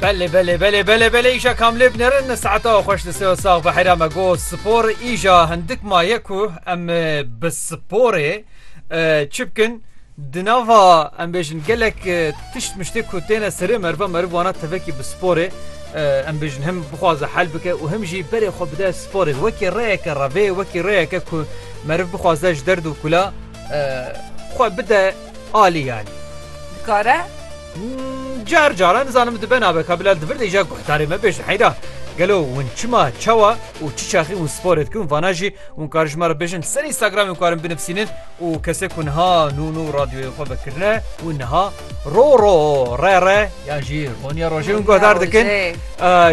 Belê belê belê belê belê îşa kamlê binerin saeta xweş li seo sax bi hera me go spor îşa hindik maye ku em bi sporê çi bikin di nava em bêjin gelek tişt miştê ku têne serê merva meriv wana tevekî bi sporê em bêjin him bixwaze hel bike û him jî berê xwe bide sporê wekî rêyeke revê wekî rêyeke ku meriv bixwaze ji derd û kula xwe bide Alî alî. Dikare? Car caran nizanim dibe nabe ka bila divir dêja guhdarê me bêjin heyra. Gelo hûn çima, çawa û çi çaxî hûn sporê dikin vana jî hûn karin ji me re bêjin li ser Instagramê hûn karin binivîsînin û kesê ku niha nû nû radyoyê xwe vekirine hûn niha ro ro re re yan jî roniya rojê hûn guhdar dikin.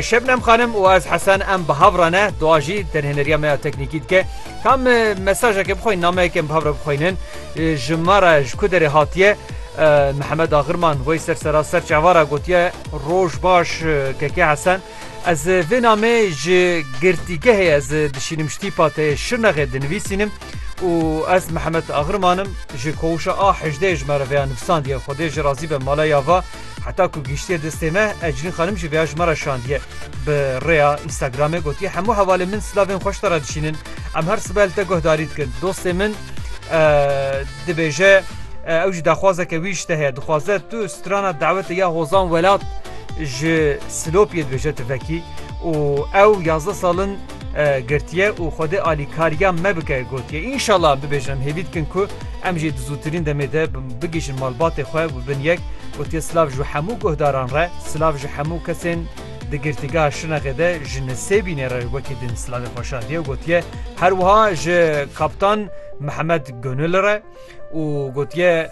Şebnem xanim û ez hesen em bi hav re ne dua jî derhêneriya me ya teknîkî dike. Kam mesajeke bixweyin nameyeke em bi hav re bixweynin. Ji me re ji ku derê hatiye Mihemed Agirman wey ser seraser çava re gotiye, Roj baş Keke Hesen. Ez vê namê ji girtîgehê ez dişînim ji tîpa te yê Şirnexê dinivîsînim û ez Mihemed Agirman im. Ji koğuşa A hejdeh ji me re vêya nivisandiye. Xwedê ji razî be mala ya va. Heta ku gihîştiye destê me, Eclîn xanim jî vêya ji me re şandiye. Bi rêya Instagramê gotiye hemû hevalên min silavên xweş te re dişînin. Em her sibe li te guhdarî dikin. Dostê min dibêje ew jî daxwazeke wî ji te heye. Dixwaze tu strana dawetê ya Hozan Welat ji Silopiyê dibêje tu vekî û ew yazdeh sal in girtiye û Xwedê alîkariya me bike gotiye. Înşallah bibêjin em hêvî dikin ku em jî di zûtirîn demê de bigihîjin malbatê xwe û bin yek gotiye silav ji hemû guhdaran re, silav ji hemû kesên di Girtîgeha Şinexê de ji Nisêbînê re wekî din silavê xwe şandiye û gotiye her wiha ji Kaptan Mihemed Gonil re û gotiye,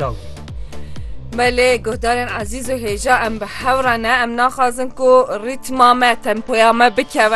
dawî. Me lê guhdarên ezîz û hêja em bi hev re ne, em naxwazin ku rîtma me, tempoya me bikeve.